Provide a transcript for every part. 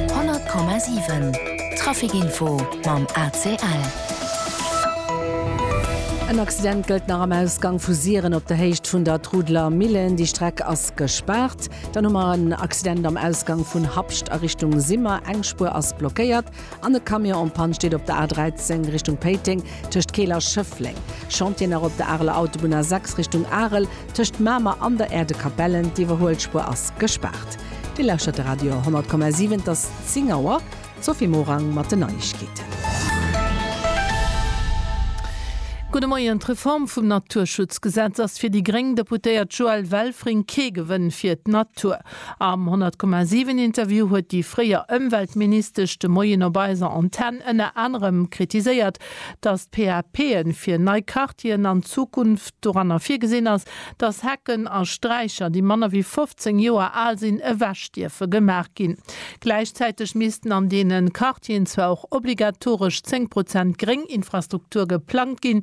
100,7 Trafic Info mam ACL. En Accident gëllt nach am Ausgang vu Siren op der Héicht vun der Trudeler Millen. Déi Streck ass gespaart. Dann hu mer en Accident am Ausgang vun Habscht a Richtung Simmer. Eng Spuer ass blockéiert. An e Camion en panne steet op der A 13 Richtung Péiteng tëscht Keel a Schëffleng. Chantieren nach op der Areler Autobunn A 6 Richtung Arel tëscht Mamer an der Erdekapellen. D'Iwwerhuelspuer ass gespaart. Dir lauschtert de Radio 10,7. Et ass 10 Auer. D'Sophie Morang mat den Neiegkeeten. Gudde Moien. D'Reform vum Naturschutzgesetz ass fir déi gréng Deputéiert Joëlle Welfring kee Gewënn fir d'Natur. Am 100,7 Interview huet déi fréier Ëmweltministesch de Moien op eiser Antenn ënner anerem kritiséiert, datt d'PAPe fir nei Quartieren an Zukunft doranner virgesinn ass, datt Hecken a Straicher, déi manner wéi 15 Joer al sinn, ewech dierfe gemaach ginn. Gläichzäiteg missten an deene Quartieren zwar och obligatoresch 10 Prozent gréng Infrastruktur geplangt ginn,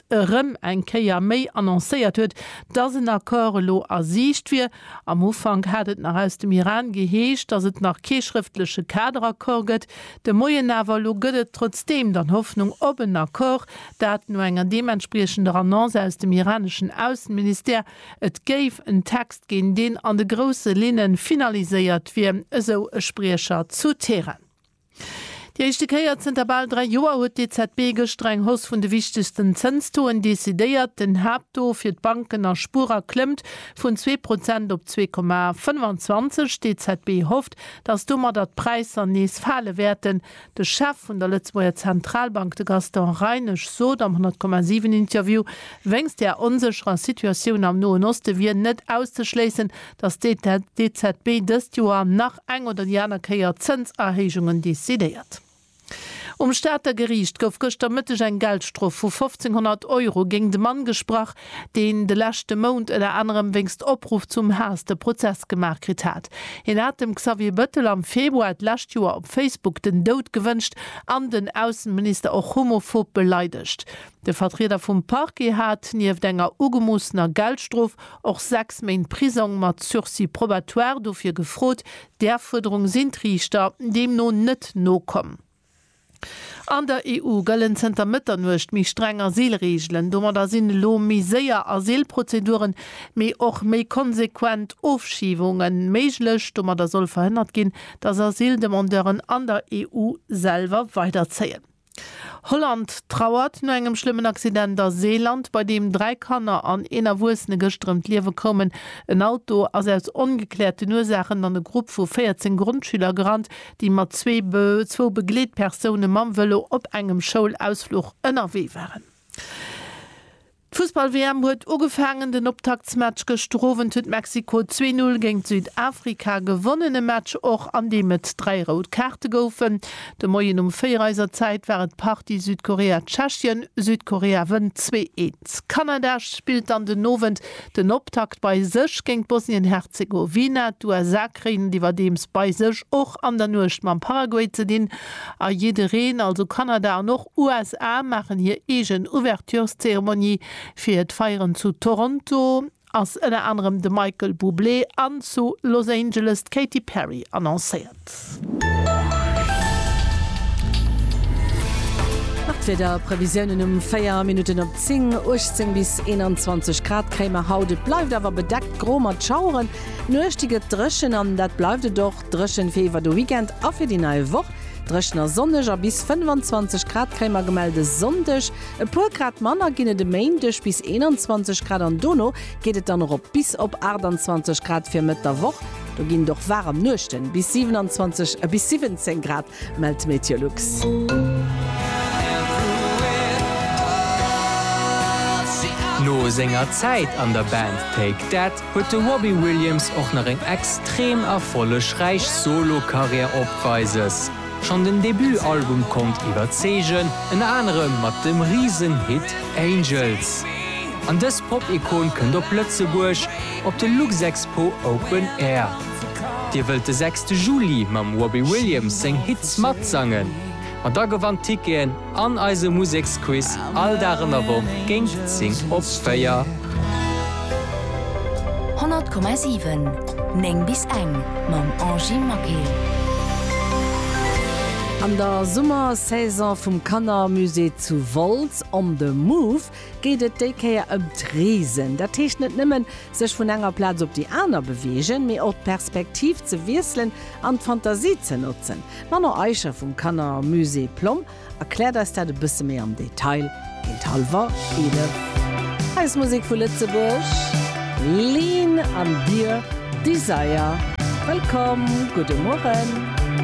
Prefekt erëm eng Kéier méi annoncéiert huet, dass en Accord elo a Siicht wier. Am Ufank hat et nach aus dem Iran geheescht, dass et nach kee schrëftleche Kaderaccord gëtt. De Moien awer elo gëtt et trotzdeem dann Hoffnung op en Accord, dat no enger deementspriechender Annonce aus dem iraneschen Ausseministère. Et géif en Text ginn, deen an de grousse Linne finaliséiert wier, esou e Spriecher zu Teheran. Déi éischte Kéier zënter bal dräi Joer huet d'EZB gëschter eng Hausse vun de wichtegsten Zënstoen decidéiert. Den Haapttaux fir d'Banken a Spuerer klëmmt vun zwee Prozent op zwee Komma 25. D'EZB hofft, datt domadder d'Präisser nees fale wäerten. De Chef vun der Lëtzebuerger Zentralbank, de Gaston Reinesch, sot am 100, 7 Interview, wéinst der onsécherer Situatioun am Noen Oste wier net auszeschléissen, datt d'EZB dëst Joer nach eng oder déi aner Kéier Zënserhéijungen decidéiert. Um Stater Geriicht gouf gëschter Mëtteg eng Geldstrof vu 1.500 Euro géingt e Mann gesprach, deen de leschte Mount ënner anerem wéinst Opruff zum Haass de Prozess gemaach kritt hat. Hien hat dem Xavier Bëttel am Februar d'lescht Joer op Facebook den Doud gewënscht an den Ausseminister och homophob beleidegt. De Vertrieder vum Parquet hat, nieft enger ugemoossener Geldstrof, och 6 Méint Prisong mat Sursis probatoire dofir gefrot. Där Fuerderung sinn d'Riichter deemno net nokomm. An der EU gëllen zënter Mëtternuecht méi streng Asylreegelen. Domadder sinn elo méi séier Asylprozeduren, mee och méi konsequent Ofschiebunge méiglech. Domadder soll verhënnert ginn, datt Asyldemandeuren an der EU selwer weiderzéien. Holland trauert no engem schlëmmen Accident a Seeland, bei deem dräi Kanner an een Erwuessene gëschter ëm d'Liewe koumen. En Auto ass aus ongekläerten Ursaachen an e Grupp vu 14 Grondschüler gerannt, déi mat zwou Begleetpersoune mam Vëlo op engem Schoulausfluch ënnerwee waren. D'Fussball-WM huet ugefaangen. Den Optaktsmatch gëschter Owend huet Mexiko zwee Null géint Südafrika gewonnen. E Match och, an deem et dräi rout Kaarte goufen. De Moien um véier eiser Zäit war et Partie Südkorea-Tschechien. Südkorea wënnt zwee Eens. Kanada spillt dann den Owend den Optakt bei sech géint Bosnien-Herzegowina. D'USA kréien et iwwerdeems bei sech och an der Nuecht mam Paraguay ze dinn. A jiddereen, also Kanada an och. USA maachen hir eegen Ouvertureszeremonie. Fir d'Feieren zu Toronto ass ënner anerem de Michael Bublé an zu Los Angeles d'Katy Perry annoncéiert. Nach d'Wieder Previsiounen um 4 Minutten op 10, 18 bis 21 Grad kréie mer haut. Et bleift awer bedeckt gro mat Schaueren. Nuecht, déi gëtt dréchen an dat bleift et och. Dréchen fir iwwer de Weekend a fir déi nei Woch. Dréchen a sonneg a bis 25 Grad kréie mer gemellt e Sonndeg. E puer Grad manner ginn et e Méindeg, bis 21 Grad an dono geet et dann erop bis op 28 Grad fir Mëtt der Woch. Do ginn et och waarem Nuechten, bis 27 bis 17 Grad. Mellt Meteolux. No senger Zäit an der Band Take That huet de Robbie Williams och nach eng extrem erfollegräich Solo-Karriär opweises. Schonn den Debut-Album konnt iwwerzeegen, ënner anerem mat dem Risen-Hit Angels. An dës Pop-Ikon kënnt op Lëtzebuerg op de Luxexpo Open Air. Dir wëllt de sechste Juli mam Robbie Williams seng Hits matsangen? Ma da gewannt Ticketen an eise Museksquiz all Dag an der Woch géint 10 op 4. 100,7 9 bis eng mam Angy Maquil. An der Summersaison vum Kannermusée zu Wolz, On the Move, geet et déi Kéier ëm d'Reesen. Dat heescht net nëmmen sech vun enger Plaz op déi aner beweegen, mee och d'Perspektiv ze wiesselen an d'Fantasie ze notzen. D'Manon Eicher vum Kannermusée Plomm erkläert eis dat e bësse méi am Detail géint hallwer 11. Eis Musek vu Lëtzebuerg, Lean an Dear Desire. Wëllkomm, gudde Mueren.